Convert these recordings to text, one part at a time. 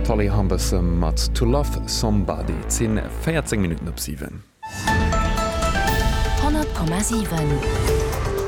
D'Holly Humberstone mat To Love Somebody. Et si 14 Minutten op 7. 100,7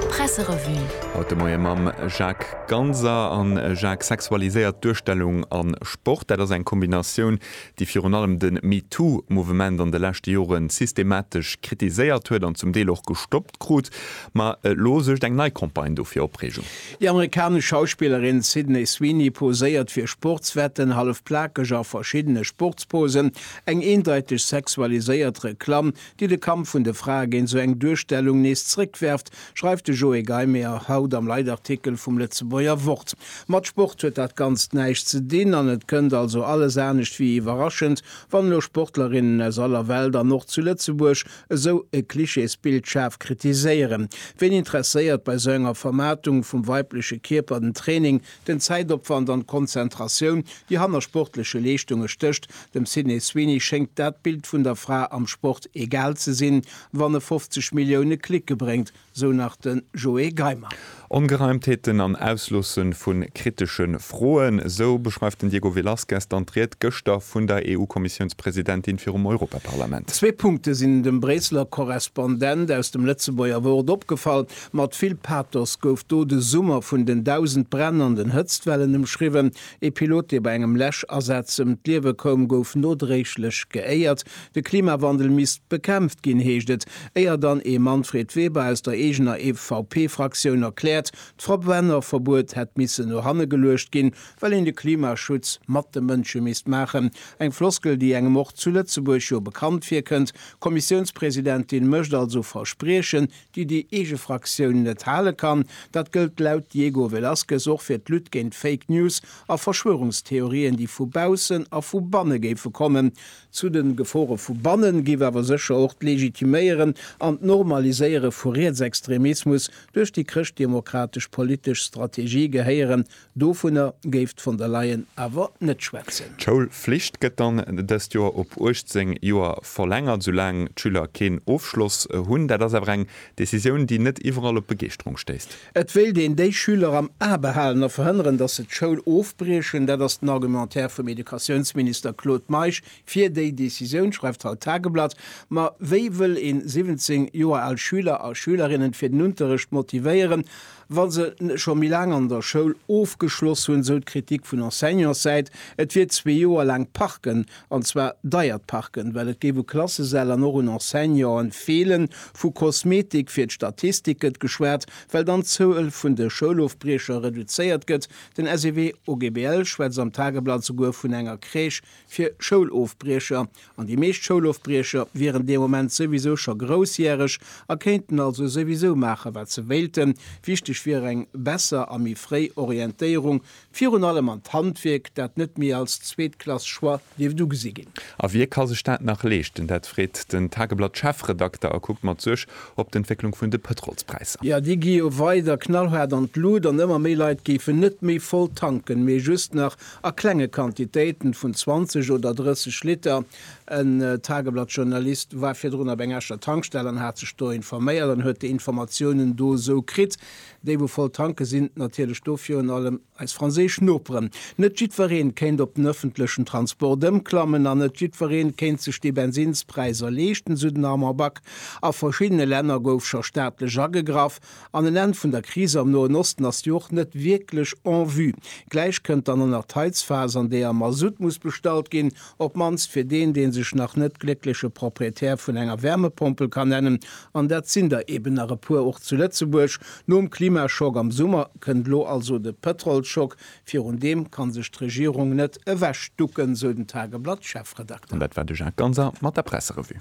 Presserevue. Haut de Moie mam Jacques Ganser. A Jacques, sexualiséiert Duerstellung a Sport, dat ass eng Kombinatioun, déi virun allem de MeToo-Mouvement an de leschte Jore systematesch kritiséiert huet an zum Deel och gestoppt krut. Ma elo suergt eng nei Campagne do fir Opreegung. Déi amerikanesch Schauspillerin Sydney Sweeney poséiert fir Sportswetten, hallef plakeg a verschiddene Sportsposen, eng eendeiteg sexualiséiert Reklamm, déi de Kampf vun de Frae géint esou eng Duerstellung nees zréckwerft, schreift de Joé Geimeyer haut am Leitartikel vum Lëtzebuerger Wort. Mat Sport huet dat Ganzt näischt ze dinn an et kënnt also alles anescht wéi iwwerraschend, wann elo Sportlerinnen aus aller Welt an och zu Lëtzebuerg Esou e Klischeesbild schaarf kritiséieren? Ween interesséiert bei esou enger Vermaartung vum weibleche Kierper den Training, den Zäitopwand an d'Konzentratioun, déi hanner sportleche Leeschtunge stécht? Dem Sydney Sweeney schéngt dat Bild vun der Fra am Sport egal ze sinn, wann e 50 Millioune Clique bréngt. sou nach de Joé Geimer. Ongereimtheeten an Ausloosse vu kritesche Froen, sou beschreift den Diego Velázquez dann d'Ried gëschter vun der EU-Kommissiounspresidentin virum Europaparlament. Zwee Punkte sinn dem Bréisseler Korrespondent aus dem Lëtzebuerger Wort opgefall, Mat vill Pathos gouf do de Summer vun den dausend Bränn an den Hëtztwellen ëmschriwwen. Ee Pilot, dee bei engem Läschasaz ëm d'Liewe koum, gouf nodréiglech geéiert. De Klimawandel misst bekämpft ginn, heescht et, éier dann ee Manfred Weber aus der eegener EVP-Fraktioun erkläert, d'Verbrennerverbuet hätt missen no hanne geluecht ginn, well een de Klimaschutz mat de Mënsche misst maachen. Eng Floskel, déi engem och zu Lëtzebuerg jo bekannt virkënnt. D'Kommissiounspresidentin mécht also Verspriechen, déi déi eege Fraktioun net hale kann. Dat gëllt laut Diego Velazquez och fir d'Lutte géint Fake News a Verschwörungstheorien, déi vu baussen a vu banne géife kommen. Zu de Gefore vu bannen géif awer sécher och d'Legitiméieren an d'Normaliséiere vu Rietsextremismus duerch déi chrëschtdemokratesch politesch Strategie gehéieren. Dovunner géif d'Von der Leyen awer net schwätzen. D'Schoulflicht gëtt dann dëst Joer op 18 Joer verlängert, soulaang d'Schüler keen Ofschloss hunn. Dat ass awer eng Decisioun, déi net iwwerall op Begeeschterung stéisst. Et wéilt een déi Schüler am A behalen a verhënneren, datt se d'Schoul ofbriechen. Dat ass den Argumentaire vum Educatiounsminister Claude Meisch fir déi Decisioun, schreift haut d'Tageblatt. Ma wéi wëll ee 17 Joer al Schüler a Schülerinnen fir den Unterrecht motivéieren, wa se scho méi laang an der Schoul ofgeschloss hunn, esou d'Kritik vun Enseignantssäit, et wier zwee Joer laang Parken an zwar deiert Parken, well et géif u Klassesäll an och un Enseignanten feelen, vu Kosmetik fir d'Statistik gëtt geschwat, well dann d'Zuel vun de Schoulofbriecher reduzéiert gëtt. Den SEW OGBL schwätzt am Tageblatt souguer vun enger Crèche fir Schoulofbriecher, an déi meescht Schoulofbriecher wieren dee Moment souwisou scho groussjäreg a kéinten also souwisou maachen, wat se wéilten. Wichteg wier eng besser a méi fréi Orientéierung Virun allem an d'Handwierk, dat net méi als zweetklass Choix dierft ugesi ginn. A wie ka sech dat nach leeschten? Dat freet den Tageblatt-Chefredakter a kuckt mat Suerg op d'Entwécklung vun de Pëtrolspräisser. Jo, déi gi jo weider knallhaart an d'Lut an ëmmer méi Leit géifen net méi voll tanken, mee just nach a klenge Quantitéiten vun 20 oder 30 Liter. En Tageblatt-Journalist war virdrun op eng Escher Tankstell an hat sech do informéiert an huet déi Informatiounen do esou kritt. Déi wou voll tanken sinn natierlech do virun allem eis franséisch Noperen. Net jiddwereen kéint op den ëffentlechen Transport ëmklammen an net jiddwereen kéint sech déi Bensinnspräiser leeschten, sou den Armand Back. A verschiddene Länner gouf scho staatlech agegraff an en Enn vun der Kris am Noen Osten ass jo och net wierklech en vue. Gläich kënnt dann en Erteilsphas an deeër Masutt muss bestallt ginn. Op mannst fir deen, dee sech nach net gléckleche Proprietär vun enger Wärmepompel kann nennen, an dat sinn der eben nach e puer och zu Lëtzebuerg. Nom Klimaschock am Summer kënnt elo also de Pëtrolsschock. Virun deem kann sech d'Regierung net ewechducken, sou den Tageblatt-Chefredakter. An dat war de Jacques Ganser mat der Presserevue.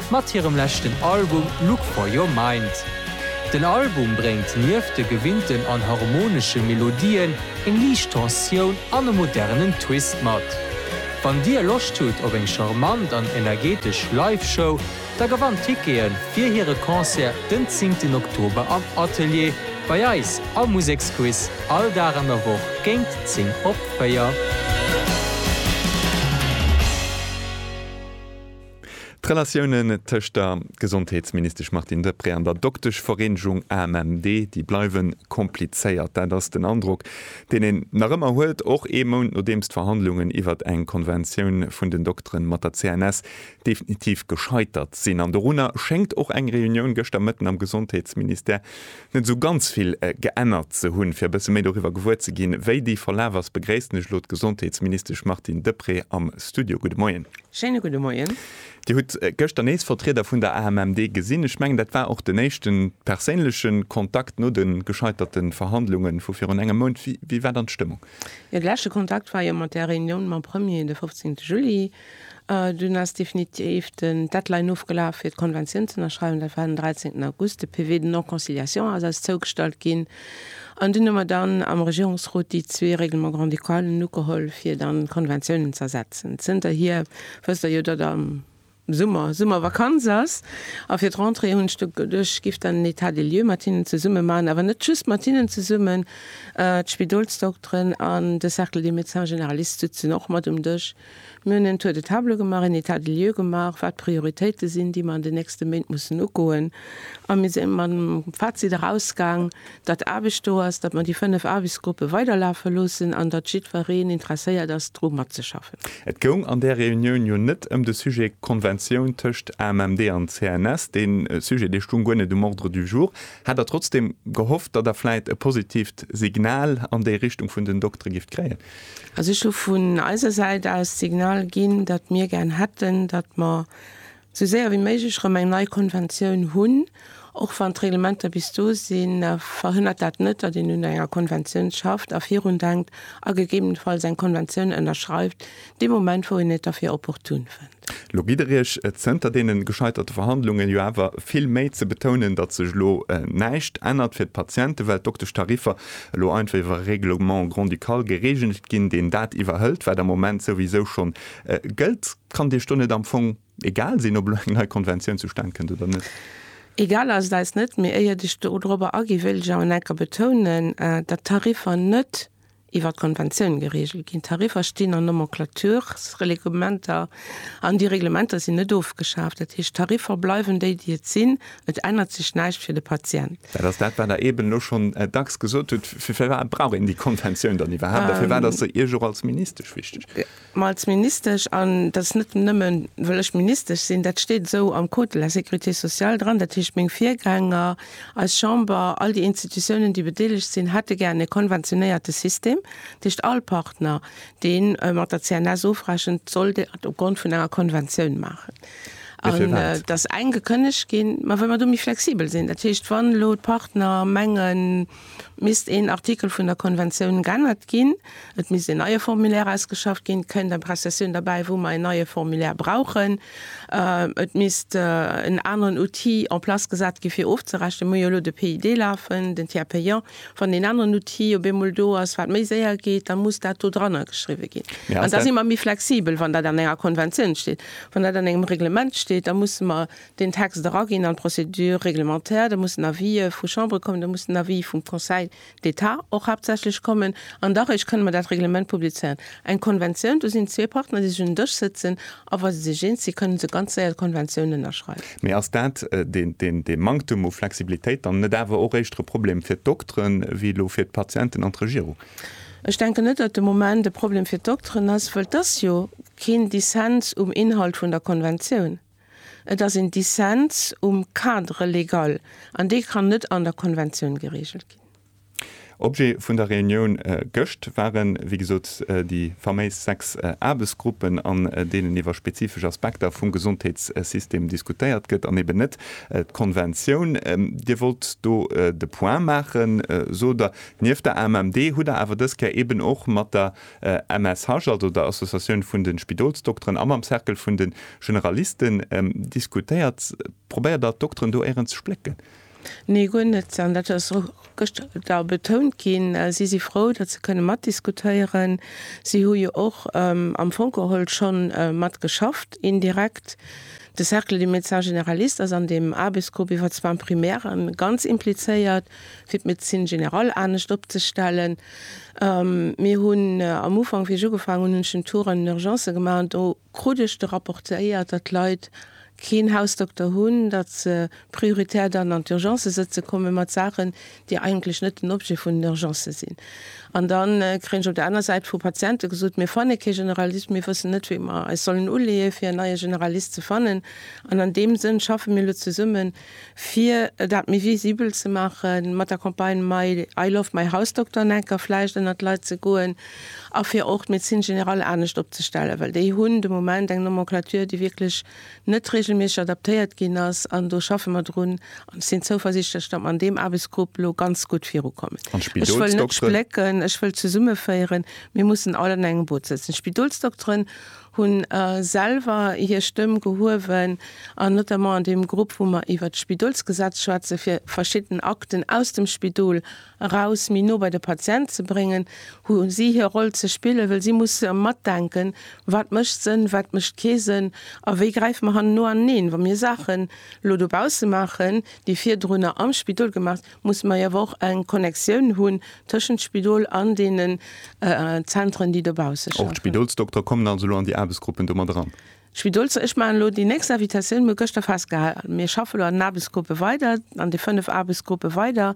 mat hirem leschten Album Look For Your Mind. Den Album bréngt nieft de gewinnten an harmonesche Melodien eng liicht Tensioun an e modernen Twist mat. Wann dir Loscht hutt op eng charmant an energetesch Live-Show, da gewannt Tickete fir hire Concert den zéngten Oktober am Atelier bei eis am Museksquiz all Dag an der Woch géint 10 op 4. D'Relatiounen tëscht der Gesondheetsministesch Martine Deprez an der Dokteschvereenegung AMMD, déi bleiwe komplizéiert. Dat ass den Androck, deen een nach ëmmer huet, och ee Mount nodeems d'Verhandlungen iwwert eng Konventioun vun den Dokteren mat der CNS definitiv gescheitert sinn. An dorunner schéngt och eng Reunioun gëschter Mëtten am Gesondheetsministère net esou ganz vill geännert ze hunn. Fir e bësse méi doriwwer gewuer ze ginn, wéi déi verlaf ass, begréissen ech elo d'Gesondheetsministesch Martine Deprez am Studio. Gudde Moien. Schéine gudde Moien. Dir hutt gëschter nees Vertrieder vun der AMMD gesinn. Ech mengen, dat war och den éischte perséinleche Kontakt no de gescheiterte Verhandlunge vu virun engem Mount. Wéi war dann d'Stëmmung? Jo, de leschte Kontakt war jo mat där Reunioun mam Premier de 15 Juli. Dunn ass definitiv den Deadline ofgelaf fir d'Konventioun z'ënnerschreiwen, dat war den 13 August. De PV de non-conciliation ass eis zougestallt ginn an dunn hu mer dann am Regierungsrot déi zwee Règlements grand-ducalen ugeholl, fir dann d'Konventiounen z'ersetzen. Zënterhier wësst Der jo, datt am Summer Summervakanz ass a fir d'Rentrée hunn ech geduecht, ech giff dann en État des lieux mat hinnen zesumme maachen, awer net just mat hinnen zesummen, d'Spidolsdokteren an de Cercle des médecins généralistes sitzen och mat um Dësch, Mir hunn en Tour de table gemaach, en État des lieux gemaach, wat d'Prioritéite sinn, déi mer an den nächste Méint mussen ugoen. A mir si mat dem Fazit erausgaang, datt Aarbecht do ass, datt mer déi fënnef Aarbechtsgruppe weiderlafe loossen an datt jiddwereen interesséiert ass, dru matzeschaffen. Et goung an där Reunioun jo net ëm de Sujet Konventioun tëscht AMMD an CNS. Dee Sujet, dee stoung guer net um Ordre du jour. Hat Der trotzdeem gehofft, datt Der vläit e positiivt Signal an déi Richtung vun den Doktere gift kréien? Also ech hu vun eiser Säit aus d'Signal ginn, datt mir gären hätten, datt mer esou séier wéi méiglech erëm eng nei Konventioun hunn. Och wann d'Reglementer bis do sinn, verhënnert dat net, datt een un enger Konventioun schafft a virun denkt a gegebenenfalls eng Konventioun ënnerschreift, dee Moment wou een et derfir opportun fënnt. Lo gitt Der Iech, zënter deene gescheiterte Verhandlungen, jo awer vill Méi ze betounen, datt sech elo näischt ännert fir d'Patienten, well d'Dokteschtariffer elo einfach iwwer e Règlement grand-ducal geregelt ginn, deen dat iwwerhëlt, wat am Moment souwisou schonn gëllt. Kann Dir Iech do net am Fong egal sinn, ob elo eng nei Konventioun zustan kënnt oder net? Egal ass et eis net, mee éiert ech dorobber aginn, wéilt ech awer nach eng Kéier betounen, datt d'Tariffer net iwwert d'Konventioun gereegelt ginn. D'Tariffer stinn an Nomenclatursreglementer an déi Reglementer sinn net ofgeschaaft. Dat heescht, d'Tariffer bleiwen déi, déi et sinn. Et ännert sech näischt fir de Patient. Dat ass dat, wat Der eeben elo schonn dacks gesot hutt. Firwat brauch een déi Konventioun dann iwwerhaapt a firwat ass se Iech och als Ministesch wichteg? Mä als Ministesch, an dat ass net nëmme well ech Ministesch sinn, dat steet esou am Code de la sécurité sociale dran, dat heescht meng Virgänger, eis Chamber, all déi Institutiounen déi bedeelegt sinn, hätte gär e konventionéierte System, dat heescht all Partner dee mat der CNS ofrechent, soll dat op Grond vun enger Konventioun maachen. An et ass eng gekënnegt ginn. Mä well mer do méi flexibel sinn, dat heescht wann elo d'Partner mengen, Misst een Artikel vun der Konventioun g'ännert ginn, et misst een neie Formulaire ausgeschafft ginn, kënnt eng Prestation derbäi, wou mer een neie Formulaire brauchen, et misst en aneren Outil en place gesat gi fir ofzerechnen. Mir hu jo elo de PID lafen, den Tiers payant. Wann deen aneren Outil op eemol do ass, wat méi séier geet, da muss dat do drannergeschriwwen ginn. An da si mer méi flexibel, wann dat an enger Konventioun steet. Wann dat an engem Reglement steet, da musse mer den Text eraginn an d'Procédure réglementaire, da mussen Avisë vu Chambere kommen, da muss den Avis vum Conseil d'État och haaptsächlech kommen an da réischt kënne mer dat Reglement publizéieren. Eng Konventioun, do sinn zwee Partner, déi sech un den Dësch sëtzen a wa se sech eens sinn, kënne se ganz séier d'Konventioun ënnerschreiwen. Mee ass dat, dee Manktum u Flexibilitéit, dann net awer och éischter e Problem fir d'Dokteren wéi elo fir d'Patienten an d'Regierung? Ech denken net, datt de Moment e Problem fir d'Dokteren ass, well et ass jo keen Dissens um Inhalt vun der Konventioun. Et ass een Dissens um Cadre légal an dee kann net an der Konventioun geregelt ginn. Objet vun der Reunioun gëscht waren, wéi gesot, déi faméis sechs Aarbechtsgruppen, an deenen iwwer spezifesch Aspekter vum Gesondheetssystem diskutéiert gëtt an eben net d'Konventioun. Dir wollt do de Point maachen, sot Der. Nieft der AMMD hutt Der awer dës Kéier eben och mat der MSH, also der Associatioun vun de Spidolsdokteren, a mam Cercle vun de Generalisten diskutéiert. Probéiert Der d'Dokteren do éirens ze splécken? Nee, guer net. An dat ass och gëschter da betount ginn. Si si frou, datt se kënne matdiskutéieren. Si hu jo och am Fong geholl scho mat geschafft, indirekt. De Cercle des médecins généralistes ass an deem Aarbechtsgrupp iwwer zwar Primären ganz implizéiert. fir d'Médecine générale anescht opzestellen. Mir hunn am Ufank, wéi ech ugefaangen hunn, hunn ech den Tour an den Urgencë gemaach an do krut ech de rapportéiert, datt d'Leit keen Hausdokter hunn, datt se prioritär dann an d'Urgencë sëtze komme mat Saachen, déi eigentlech net den Objet vun den Urgencë sinn. An da kréien ech op der aner Säit vu Patiente gesot, mir fanne kee Generalist, mir wëssen net, wéi mer eis sollen uleeë fir en neie Generalist ze fannen. An an deem Sënn schaffe mir elo zesummen. Fir dat méi visibel ze maachen, mat der Campagne My I love my house doctor en enker vläicht ënnert d'Leit ze goen a fir och d'Médecine générale anescht opzestellen, well déi hunn de Moment eng Nomenclature, déi wierklech net reegelméisseg adaptéiert ginn ass. An do schaffe mer drun an ech sinn zouversichtlech, datt mer an deem Aarbechtsgrupp elo ganz gutt virukommen. Ech wëll net splécken, ech wëll zesummeféieren. Mir mussen all an engem Boot sëtzen. D'Spidolsdokteren hunn selwer hir Stëmm gehuewen an notamment an deem Grupp, wou mer iwwert d'Spidolsgesetz schwätzen, fir verschidden Akten aus dem Spidol eraus méi no bei de Patient ze bréngen, hu si hir Roll ze spillen, well si musse matdenken, wat mécht Sënn, wat mécht kee Sënn a wéi gräife mer hanneno aneen, wa mir Saachen elo dobausse maachen, déi virdrunner am Spidol gemaach. musse mer awer och eng Connectioun hunn tëschent Spidol an deenen Zentren, déi dobausse schaffen. Och d'Spidolsdoktere kommen also elo an déi Aarbechtsgruppen do mat eran? D'Spidols, ech maachen elo déi nächst Invitatioun, mir hu gëschter festgehalen, mir schaffe elo an den Aarbechtsgruppe weider, an de 5 Aarbechtsgruppe weider,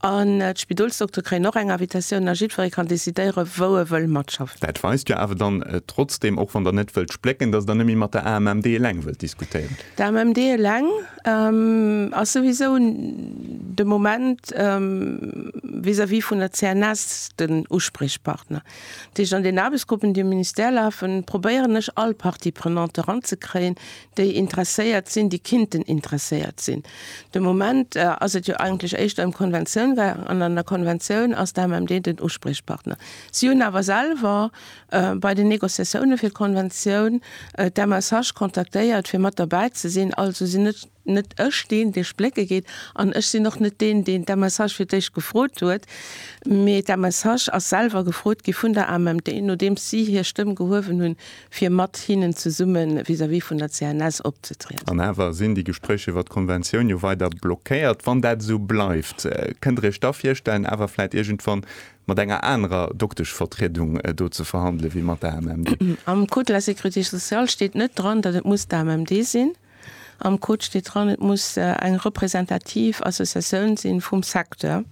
an d'Spidolsdoktere kréien och eng Invitatioun a jiddweree kann decidéiere wou e wëll matschaffen. Dat weist jo awer dann trotzdeem, och wann Der net wëllt splécken, datt Der net méi mat der AMMD eleng wëllt diskutéieren. D'AMMD eleng Ass souwisou de Moment vis-à-vis vun der CNS den Uspriechpartner. Dat heescht, an den Aarbechtsgruppen, déi am Ministère lafen, probéieren ech all Parties prenantes eranzekréien, déi interesséiert sinn, déi kinnten interesséiert sinn. De Moment ass et jo eigentlech éischter ëm d'Konventioun gaangen, an an der Konventioun ass d'AMMD den Uspriechpartner. Si hunn awer selwer bei den Negociatioune fir d'Konventioun d'MSH kontaktéiert fir mat derbäi ze sinn. Also sinn net net ech deen, dee splécke geet an ech sinn och net deen, deen d'MSH fir d'éischt gefrot huet, mee d'MSH ass selwer gefrot gi vun der AMMD, nodeems si hir Stëmm gehuewen hunn, fir mat hinnen zesumme vis-à-vis vun der CNS opzetrieden. An awer sinn déi Gespréich iwwert d'Konventioun jo weider blockéiert. Wann dat esou bleift, kënnt Der Iech da virstellen, awer vläit iergendwann mat enger anerer Dokteschvertriedung do ze verhandelen, wéi mat der AMMD. Am Code de la sécurité sociale steet net dran, datt et muss d'AMMD sinn. Am Code steet dran, et muss eng representativ Associatioun si vum Secteur.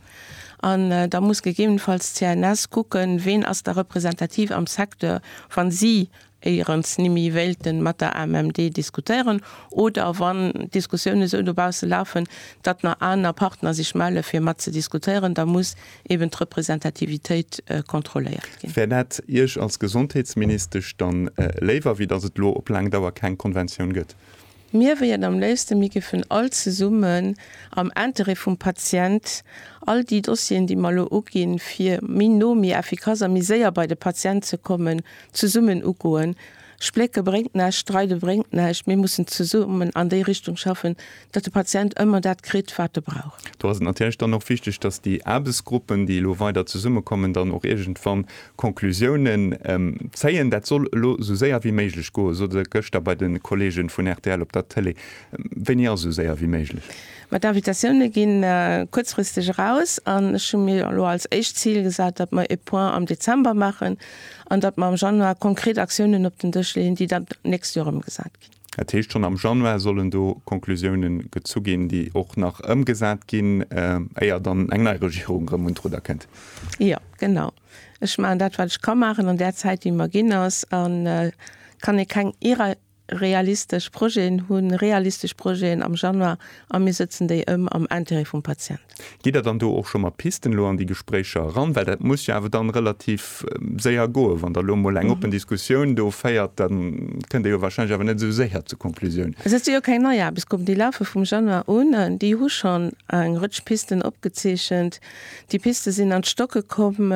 An da muss gegebenenfalls d'CNS kucken, ween ass da representativ am Secteur, wa si éierens nimi wéilten mat der AMMD diskutéieren oder wann Diskussiounen esou dobaussen lafen, datt na aner Partner sech mellen fir mat ze diskutéieren, da muss eben d'Representativitéit kontrolléiert ginn. Wär dat Iech als Gesondheetsministesch dann léiwer wéi datt et lo op laang Dauer keng Konventioun gëtt? Mir wéiert am léifsten, mir géifen all zesummen am Intérêt vum Patient all déi Dossieren, déi mer elo uginn, fir méi no, méi effikass a méi séier bei de Patient ze kommen, zesummen ugoen. Splécke bréngt näischt, streide bréngt näischt. Mir mussen zesummen an déi Richtung schaffen, datt de Patient ëmmer dat kritt, wat e brauch. Do ass et natierlech dann och wichteg, datt déi Aarbechtsgruppen, déi elo weider zesummekommen, dann och iergendwann Conclusiounen zéien. Dat soll elo esou séier wéi méiglech goen, sot Der gëschter bei de Kolleege vun rtl op der Tëlee. Wéini ass esou séier wéi méiglech? Ma d'Invitatioune ginn kuerzfristeg eraus an ech hu mir elo als éischt Zil gesat, datt mer e Point am Dezember maachen an datt mer am Januar konkret Aktiounen op den Dësch leeën, déi dann d'nächst Joer ëmgesat ginn. Dat heescht, schonn am Januar sollen do Konklusioune gezu ginn, déi och nach ëmgesat ginn, éier dann eng nei Regierung erëm un d'Rudder kënnt. Jo, genau. Ech maachen dat, wat ech ka maachen an där Zäit, déi mer ginn ass. A kann ee keng irrealistesch Projeten hunn, realistesch Projeten am Januar a mir sëtzen déi ëm am Intérêt vum Patient. Gitt Der dann do och scho mat Pisten elo an déi Gespréicher eran? Well dat muss jo awer dann relativ séier goen. Wann Der elo emol eng oppen Diskussioun do féiert, da kënnt Der jo warscheinlech awer net esou séier zur Konklusioun. Also dat si jo keng nei Aarbechtsgruppen, déi lafe vum Januar un an déi hu schonn eng Rëtsch Pisten opgezeechent. Déi Piste sinn an d'Stocke komm.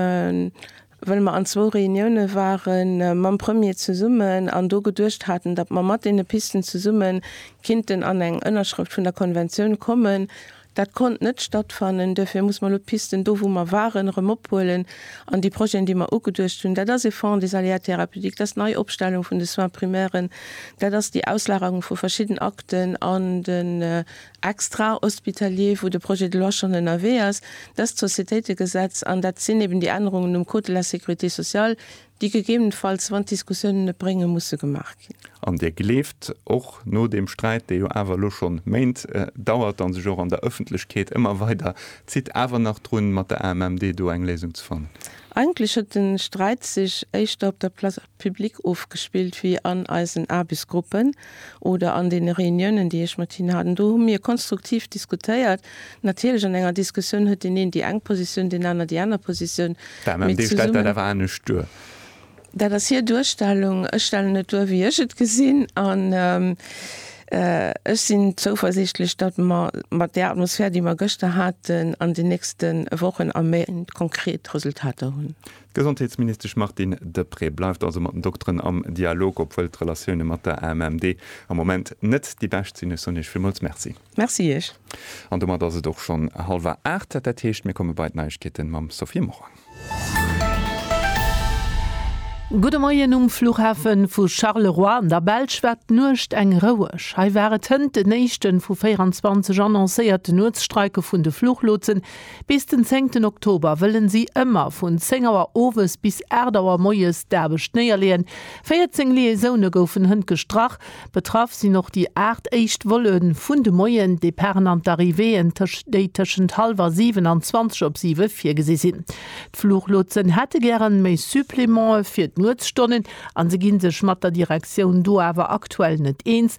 well mer an zwou Reunioune ware mam Premier zesummen an do geduecht haten, datt mer mat deene Pisten zesumme kinnten an eng Ënnerschrëft vun der Konventioun kommen. Dat konnt net stattfannen. Duerfir muss mer elo d'Pisten do, wou mer waren, erëm ophuelen an déi Projeten, déi mer ugeduecht hunn, dat ass e Fonds des aléas thérapeutiques, dat ass d'Neiopstellung vun de Soins primairen, dat ass déi Auslagerung vu verschidden Akten an den extrahospitalier, wou de Projet de loi schonn ënnerwee ass, dëst Sociétéitegesetz, an dat sinn eben déi Ännerungen um Code de la sécurité sociale, déi gegebenenfalls, wann d'Diskussiounen et bréngen, musse gemaach ginn. An Dir gleeft, och no deem Sträit, dee jo awer elo schonn Méint dauert a sech och an der Ëffentlechkeet ëmmer weider zitt, awer nach drun, mat der AMMD do eng Léisung ze fannen? Eigentlech huet de Sträit sech éischter op der Place. Public ofgespillt wéi an eisen Aarbechtsgruppen oder an deene Reuniounen, déi ech mat hinnen hat. An do hu mir konstruktiv diskutéiert. Natierlech, an enger Diskussioun huet deen een déi eng Positioun, deen aner déi aner Positioun. D'AMMD stellt dat awer anescht duer. Dat ass hir Duerstellung. Ech stellen et duer, wéi ech et gesinn. An ech sinn zouversiichtlech, datt mer mat där Atmosphär, déi mer gëschter haten, an den nächste Wochen a Méint konkret Resultater hunn. D'Gesondheetsministesch Martine Deprez bleift also mat den Dokteren am Dialog, obwuel d'Relatioune mat der AMMD am Moment net déi bescht sinn. Ech soen Iech villmools Merci. Merci Iech. An domat ass et och schonn hallwer aacht. Dat heescht, mir komme bei d'Neiegkeete mam Sophie Morang. Gudde Moien. Um Flughafe vu Charleroi an der Belsch war d'Nuecht eng roueg. Hei war et hënt den éischte vu 24 annoncéierte Nuetsstreike vun de Fluchlotsen, Bis den zéngten Oktober wëllen si ëmmer vun 10 Auer owes bis 8 Auer moies d'Aarbecht néierleeën. 14 Liaisoune goufen hënt gestrach. Betraff sinn och déi 8 éischt Volle vun de Moien-Departen an d'Arrivéeën, déi tëschent hallwer 7 an 20 op 7 virgesi sinn. D'Fluchlotsen hätte gären méi Supplemente fir d'Nuetsstonnen a se gi sech mat der Direktioun do awer aktuell net eens.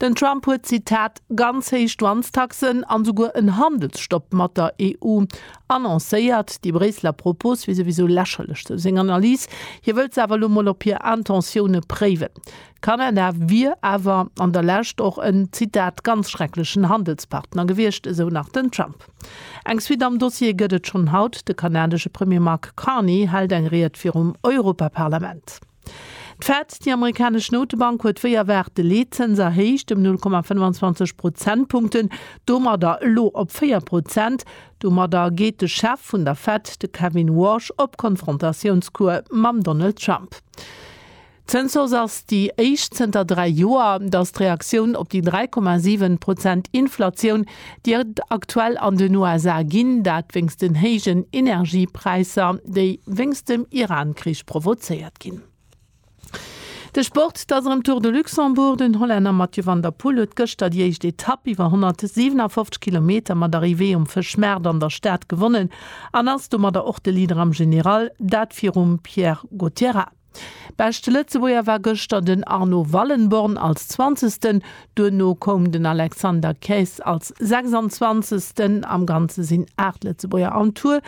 Den Trump huet, Zitat, ganz héich Douanestaxen an esouguer en Handelsstopp mat der EU annoncéiert. Déi Bréisseler Propos wier souwisou lächerlech, sou seng Analys. Hie wëllt se awer elo mol op hir Intentioune préiwen. Kanada wier awer an der Lescht och en, Zitat, ganz schrecklechen Handelspartner gewiescht, esou nach den Trump. Eng Suite am Dossier gëtt et schonn haut, De kanadesche Premier Mark Carney hält eng Ried virum Europaparlament. D'Fed, déi amerikanesch Notebank, huet wéi erwaart de Leetzëns erhéicht ëm 0,25 Prozentpunkten, domadder elo op 4 Prozent. Domadder geet de Chef vun der Fed, de Kevin Warsh, op Konfrontatiounscours mam Donald Trump. D'Zënshaus ass déi éischt zënter dräi Joer, datt d'Reaktioun op déi 3,7 Prozent Inflatioun, déi et aktuell an den USA ginn, dat wéinst den héijen Energiepräisser, déi wéinst dem Iran-Krich provozéiert ginn. De Sport, et ass erëm Tour de Luxembourg. Den Hollänner Mathieu van der Poel huet gëschter déi éischt Etapp iwwer 157 Kilometer mat Arrivée um Fëschmaart an der Stad gewonnen an ass domadder och de Leader am General, dat virum Pierre Gauthierat. Beschte Lëtzebuerger war gëschter den Arno Wallenborn als Zwanzegsten, duerno koum den Alexander Keys als Sechsanzwanzegsten. Am Ganze sinn 8 Lëtzebuerger am Tour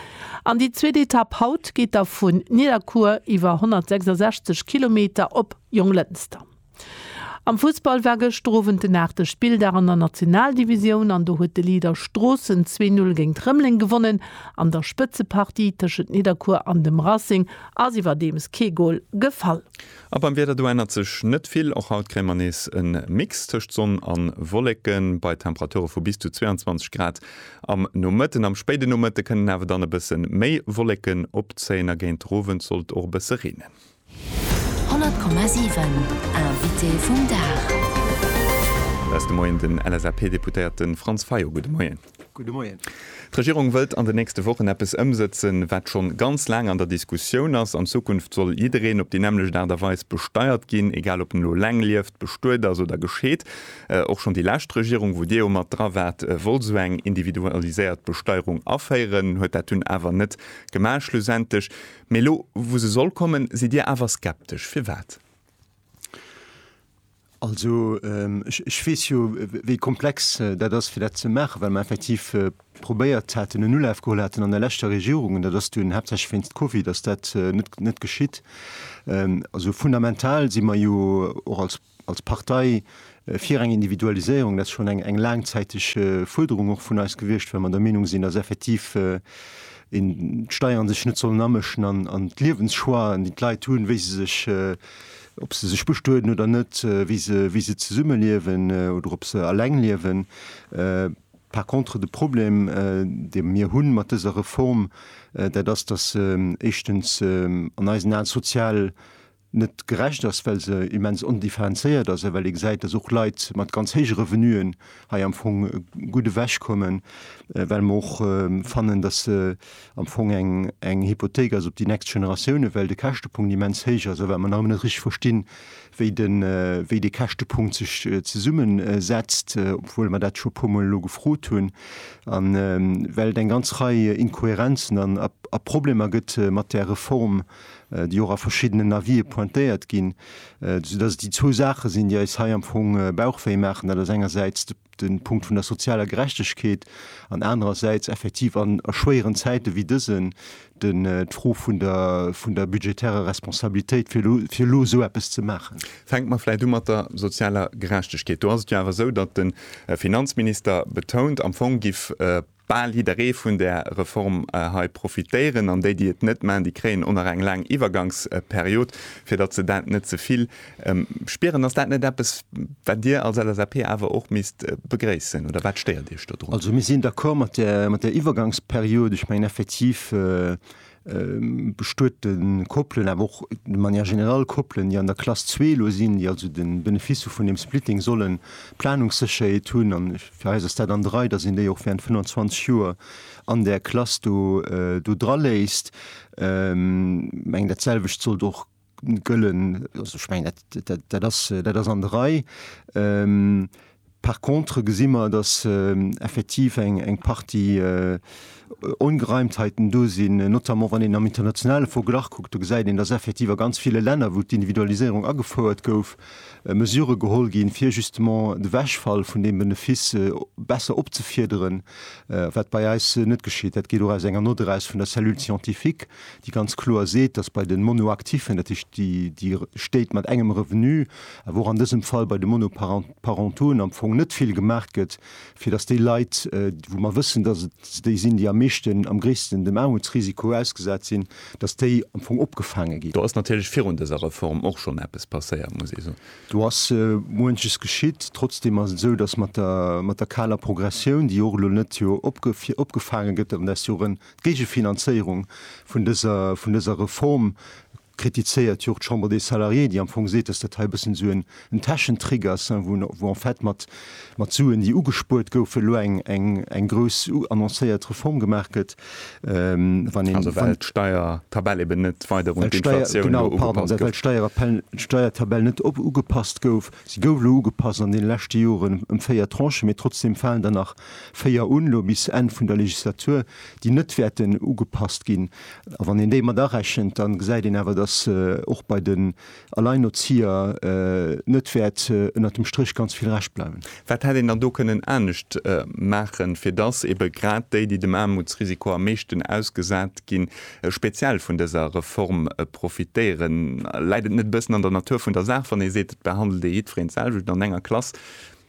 an déi zweet Etapp haut geet da vun Nidderkuer iwwer 166 Kilometer op Jonglënster. Am Fussball war gëschter Owend den aachte Spilldag an der Nationaldivisioun an do huet de Leader Stroossen zwee Null géint Rëmeleng gewonnen. An der Spëtzepartie tëschent Nidderkuer an dem Racing ass iwwerdeems kee Gol gefall. A beim Wieder, do ännert sech net vill. Och haut kréie mer nees e Mix tëscht Sonn a Wolleken, bei Temperature vu bis zu 22 Grad am Nomëtten. Am spéiden Nomëtte kënnen awer dann e bësse méi Wolleken opzéien a géint Owend sollt och e bësse reenen. 100,7 Invité vum Dag. Aus dem Moien den LSAP-Deputéierte Franz Fayot, gudde Moien. Gudde Moien. D'Regierung wëllt an den nächste Wochen eppes ëmsëtzen, wat schonn ganz laang an der Diskussioun ass. An Zukunft soll jiddereen op déi nämmlecht Aart a Weis besteiert ginn, egal ob en elo leng lieft, bestuet ass oder gescheet. Och schonn déi lescht Regierung, wou Dir jo mat dra waart, wollt esou eng individualiséiert Besteierung aféieren, huet dat dunn awer net gemaach schlussendlech. Mee elo, wou se soll kommen, sidd Dir awer skeptesch. Firwat? Also, ech weess jo, wéi komplex dat ass, fir dat ze maachen, well mer effektiv probéiert haten, en Ulaf geholl haten an der leschter Regierung, an dat ass dunn haaptsächlech wéinst Covid ass dat net geschitt. Also fundamental si mer jo och als. als Partei fir eng Individualiséierung. Dat ass schonn eng laangzäiteg Fuerderung och vun eis gewiescht, well mer der Meenung sinn, datt effektiv d'Steieren sech net sollen amëschen an d'Liewenschoixen, déi d'Leit hunn, wéi se sech, ob se sech bestueden oder net, wéi se, wéi se zesumme liewen oder ob se eleng liewen. Par contre, de Problem, dee mir hu mat dëser Reform, dat ass, datt éischtens an eisen Aen d'sozial net gerecht ass, well se immens ondifferenzéiert ass a well ee gesäit, dass och Leit mat ganz héije Revenuen hei am Fong gutt ewechkommen, well mer och fannen, dass se am Fong eng Hypothék ass op déi nächst Generatiounen, well de Käschtepunkt immens héich ass a well mer nach ëmmer net richteg verstinn, wéi dee Käschtepunkt sech zesummesetzt, obwuel mer dat scho e puermol elo gefrot hunn, a well et eng ganz Rei Inkohärenzen a Problemer gëtt mat där Reform. déi och a verschiddenen Avisë pointéiert ginn, soudass et déi zwou Saache sinn, déi eis hei am Fong Bauchwéi maachen, dat ass engersäits de Punkt vun der sozialer Gerechtegkeet an anerersäits effektiv a schwéieren Zäite wéi dësen d'Fro vun der budgetärer Responsabilitéit, fir elo esou eppes ze maachen. Fänke mer vläicht u mat der sozialer Gerechtegkeet. Do ass et jo awer esou, datt de Finanzminister betount, am Fong géif bal jidderee vun där Reform hei profitéieren an déi, déi et net maachen, déi kréien och nach eng laang Iwwergangsperiod, fir datt se dat net ze vill spieren. Ass dat net eppes, wat Dir als LSAP awer och misst begréissen, oder wat stéiert Iech dodrun? Also mir sinn d'accord mat där Iwwergangsperiod. Ech mengen effektiv, bestuete Koppelen, awer och de manière générale Koppelen, déi an der Klass zwee elo sinn, déi also de Benefice vun deem Splitting sollen, Planungssécherheet hunn. A fir eis ass dat an der Rei, datt een déi och während 25 Joer an där Klass do draléisst. Mengen, datselwecht sollt och. gëllen. Also ech mengen, dat ass an der Rei. Par contre gesi mer, datt effektiv eng Partie Ongereimtheiten do sinn, notamment wann een am internationale Verglach kuckt. Do gesäit een, datt effektiv a ganz ville Länner, wou d'Individualiséierung agefouert gouf, Mesurë geholl ginn, fir justement de Wegfall vun deem Benefice besser opzefiederen, wat bei eis net geschitt. Dat geet och aus enger Nott eraus vun der Cellule scientifique. déi ganz kloer seet, dass bei de Monoactiffen, dat heescht déi Stéit mat engem Revenu, awer och an dësem Fall bei de Monoparentauxen, am Fong net vill gemaach gëtt, fir dass déi Leit, wou mer wëssen, dass et déi sinn, déi am meeschten, am gréissten dem Aarmutsrisiko ausgesat sinn, dass déi am Fong opgefaange ginn. Do ass natierlech virun dëser Reform och schonn eppes passéiert, muss ee soen. Do ass muenches geschitt. Trotzdem ass et esou, dass mat der kaler Progressioun, déi och elo net jo opgefaange gëtt, an där es jo rën, D'Géigefinanzéierung vun dëser, vun dëser Reform kritizéiert jo och d'Chambre des Salariés, déi am Fong seet, dass dat hei e bëssen esou en Täschentrick ass, wou, wou en fait mat, mat Suen, déi ugespuert goufen, elo eng, eng, eng grouss annoncéiert Reform gemaach gëtt. Wann een, Also well d'Steiertabell eben net weider un d'Inflatioun ugepasst gouf. Well d'Steiertabell net ugepasst gouf. Si gouf elo ugepasst an deene leschte Joren ëm véier Tranchen, mee trotzdeem falen der nach véier un, elo bis Enn vun der Legislatur, déi net wäerten ugepasst ginn. A wann een déi mat arechent, da gesäit een awer, datt och bei den Alleinerzieher net wäert ënnert dem Stréch ganz vill Rescht bleiwen. Wat hätt een dann do kënnen anescht maachen, fir datt eebe grad déi, déi dem Aarmutsrisiko am meeschten ausgesat ginn, speziell vun dëser Reform profitéieren? Läit et net e bëssen an der Natur vun der Saach, wann ee seet, et behandelt ee jiddwereen d'selwecht oder an enger Klass,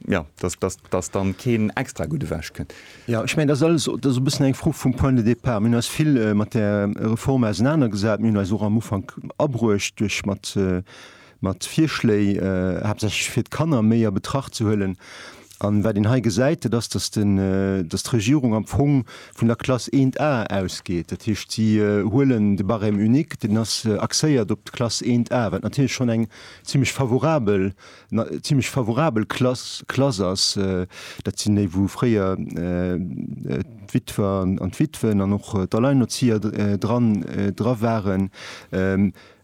jo, dass, dass, dass dann keen extra gutt ewechkënnt? Jo, ech mengen, dat ass alles, dat ass e bëssen eng Fro vum Point de départ. Mir hunn eis vill mat där Reform ausenanergesat. Mir hunn eis och am Ufank abruecht duerch mat, mat Virschléi haaptsächlech fir d'Kanner méi a Betracht ze huelen. A wat een hei gesäit, dat ass, datt den, datt d'Regierung am Fong vun der Klass 1A ausgeet. Dat heescht, si huelen de Barème unique, deen ass axéiert op d'Klass 1A, wat natierlech schonn eng zimlech favorabel, zimlech favorabel Klass, Klass ass. Dat sinn déi, wou fréier d'Witwer an d'Witwen an och d'Alleinerzieher dran, dra waren.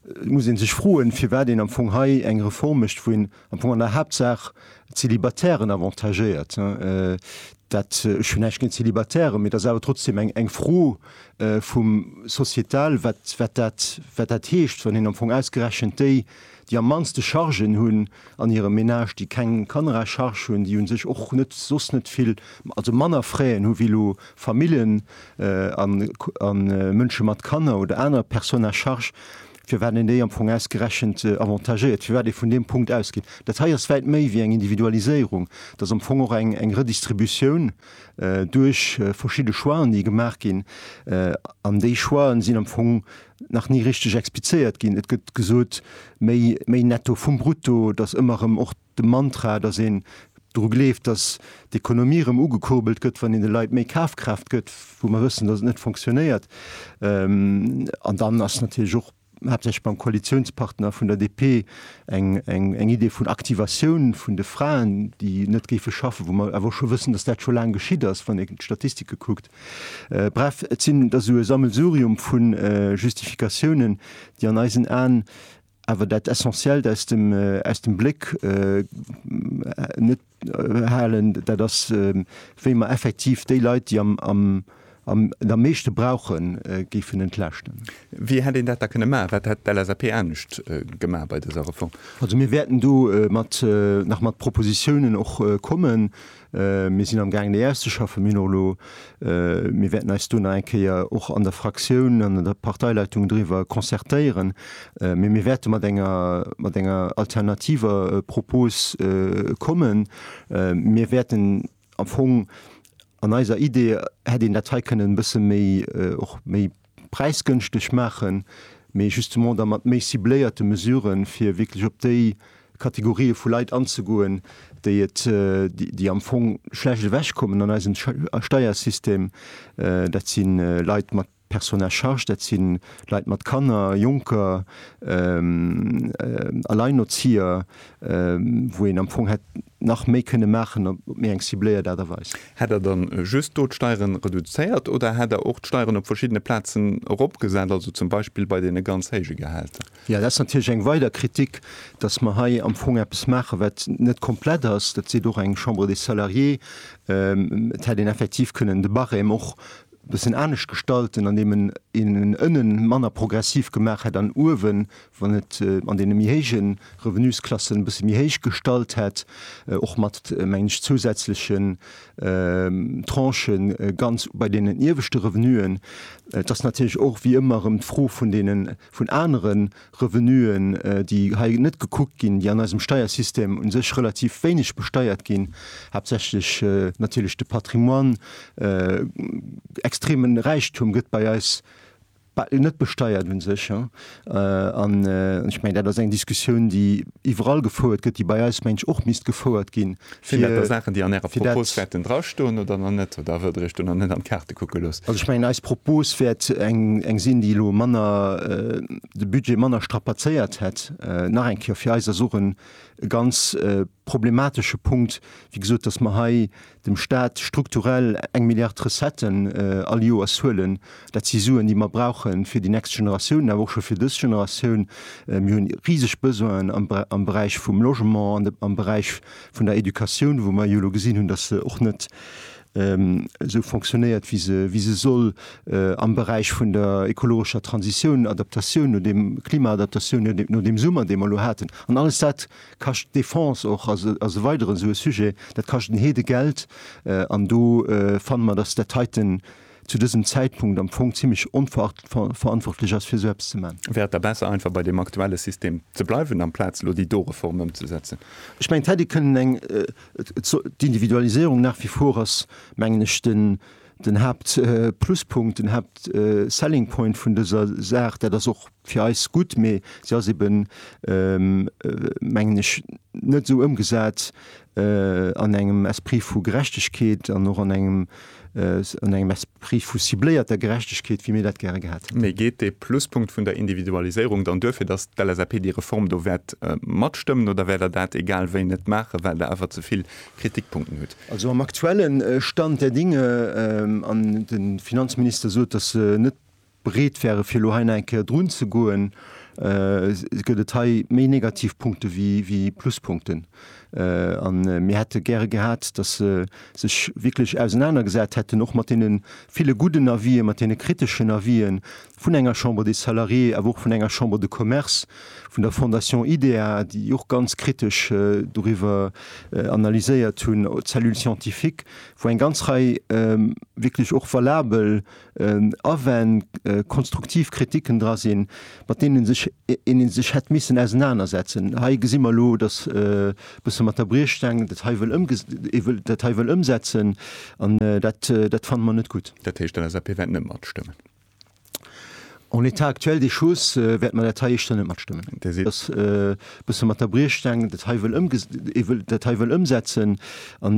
Et muss ee sech froen, firwat een am Fong hei eng Reform mécht, wou een am Fong an der Haaptsaach d'Célibatairen avantagéiert. Dat, ech hunn näischt géint d'Célibatairen, mee et ass awer trotzdem eng Fro vum sociétal, wat dat, wat dat heescht, wann een am Fong ausgerechent déi, déi am mannste Chargen hunn an hirem Menage, déi keng Kanner à charge hunn, déi u sech och net, soss net vill, also manner Frais hu wéi elo Familljen a Mënsche mat Kanner oder aner Personnes à charge, firwat een déi am Fong ausgerechent avantagéiert, firwat ee vun deem Punkt ausgeet. Dat hei ass wäit méi wéi eng Individualiséierung. Dat ass am Fong och eng Redistributioun duerch verschidde Choixen, déi gemaach ginn. An déi Choixen sinn am Fong nach ni richteg explizéiert ginn. Et gëtt gesot, méi Netto vum Brutto, datt ëmmer erëm och De Mantra, dass een dru gleeft, dass d'Ekonomie erëm ugekurbelt gëtt, wann een de Leit méi Kafkraaft gëtt, wou mer wëssen, dass et net fonctionnéiert. An dann ass natierlech och haaptsächlech beim Koalitionspartner vun der DP eng Idee vun Aktivatioun vun de Fraen, déi net géife schaffen, wou mer awer och scho wëssen, dass dat scho laang geschitt ass, wann een d'Statistike kuckt. Bref, et sinn, et ass esou e Sammelsurium vu Justifikatiounen, déi an eisen Aen awer dat Essentiellt aus dem, aus dem Bléck net halen, dat ass, wéi mer effektiv déi Leit, déi am, am, am der meeschte brauchen, géifen entlaaschten. Wéi hätt een dat da kënne maachen? Wat hätt d'LSAP anescht gemaach bei dëser Reform? Also mir wäerten do mat, nach mat Propositionen och kommen. Mir sinn amgaangen, déi auszeschaffen. Mir hunn och elo, mir wäerten eis do nach eng Kéier och an der Fraktioun, an der Parteileitung driwwer concertéieren. Mee mir wäerte mat enger, mat enger alternativer Propos kommen. Mir wäerten am Fong, an eiser Idee hätt een dat hei kënnen e bësse méi, och méi, präisgënschteg maachen, mee justement da mat méi cibléierte Mesuren, fir wierklech op déi Kategorië vu Leit anzegoen, déi et, déi am Fong schlecht ewech kommen an eisem Steiersystem. Dat si Leit mat Personnes à charge, dat si Leit mat Kanner, Jonker, Alleinerzieher. wou een am Fong hätt nach méi kënne maachen op méi eng cibléiert Aart a Weis. Hätt Der dann just do d'Steieren reduzéiert oder hätt Der och d'Steieren op verschiddene Plazen eropgesat, also zum Beispill bei deene ganz héije Gehälter? Jo, dat ass natierlech eng weider Kritik, dass mer hei am Fong eppes maachen, wat net komplett ass. Dat seet och eng Chambre des Salariés. Et hätt een effektiv kënnen de Barème och e bëssen anescht gestalten, andeem een en ënnen manner progressiv gemaach hätt an uewen wann et an deene méi héije Revenusklassen e bësse méi héich gestallt hätt, och mat, mengen ech, zousätzlechen Tranchen ganz bei deenen ieweschte Revenuen. Et ass natierlech och wéi ëmmer erëm d'Fro vun deenen, vun anere Revenuen, déi hei net gekuckt ginn, déi an eisem Steiersystem u sech relativ wéineg besteiert ginn, haaptsächlech natierlech de Patrimoine. Extremen Räichtum gëtt bei eis Bah, net besteiert un sech. An ech mengen, dat ass eng Diskussioun, déi iwwerall gefouert gëtt, déi bei eis, meng ech, och misst gefouert ginn. Sinn dat da Saachen, déi an Ärer Propos wäerten drastoen oder nach net? Oder huet Der Iech do nach net an d'Kaarte kucke gelooss? Also ech mengen, eis Propos wäert eng sinn, déi elo manner, de Budget manner strapazéiert hätt. Nach eng Kéier, fir eis ass och e ganz problematesche Punkt, wéi gesot, datt mer hei dem Stat strukturell eng Milliard Recetten all Joers huelen. Dat si Suen, déi mer brauche fir déi nächst Generatiounen, awer och scho fir dës Generatioun. Mir hunn riseg Besoinen am Beräich vum Logement an am Beräich vun der Educatioun, wou mer jo elo gesinn hunn, datt se och net esou fonctionnéiert, wéi se soll, am Beräich vun der ekologescher Transitioun, Adaptatioun no deem Klima, Adaptatioun no deem Summer, dee mer elo haten. An alles dat Kascht d'Defense och, ass e weideren esou e Sujet. Dat kascht en Heede Geld an do fanne mer, dass dat heiten zu dësem Zäitpunkt am Fong zimlech onverantwortlech ass, fir esou eppes ze maachen. Wär et da besser, einfach bei deem aktuelle System ze bleiwen, amplaz elo déi do Reform ëmzesetzen? Ech mengen, et hätt ee kënnen eng, d'Individualisierung nach wie vor ass, mengen ech, de Den Haapt Pluspunkt, den Haapt Selling Point vun dëser Saach, dat ass och fir eis gutt, mee se ass eben, mengen ech, net esou ëmgesat an engem Esprit vu Gerechtegkeet an och an engem an engem Esprit vu cibléierter Gerechtegkeet, wéi mir dat gäre gehat hätten. Mee geet dee Pluspunkt vun der Individualiséierung dann duerfir, datt d'LSAP déi Reform do wäert matstëmmen, oder wäert Der dat egal wéi net maachen, well Der awer ze vill Kritikpunkten hutt. Also am aktuelle Stand der Dinge, an de Finanzminister sot, datt se net bereet wäre fir elo hei nach eng Kéier drun ze goen, gëtt et hei méi negativ Punkte wéi Pluspunkten. A mir hätte gäre gehat, datt se sech wierklech ausenanergesat hätten och mat deene ville gudden Avisë, mat deene kriteschen Avisë vun enger Chambre des Salariés, awer och vun enger Chambre de Commerce, vun der Fondation IDEA, déi och ganz kritesch doriwwer analyséiert hunn, d'Cellule scientifique, wou eng ganz Rei wierklech och valabel Awänn, konstruktiv Kritiken dra sinn, mat deenen sech een ee sech hätt missen ausenanersetzen. Hei gesi mer elo, datt e bësse mat der Briechstaang dat hei wëll ëmges, ee wëll dat hei wëll ëmsetzen, an dat, dat fanne mer net gutt. Dat heescht, d'LSAP wäert net matstëmmen. En état actuel des choses wäerte mer dat hei éischter net matstëmmen. Dir sidd. Dass e bësse mat der Briechstaang dat hei wëll ëmges-, ee wëll dat hei wëll ëmsetzen an,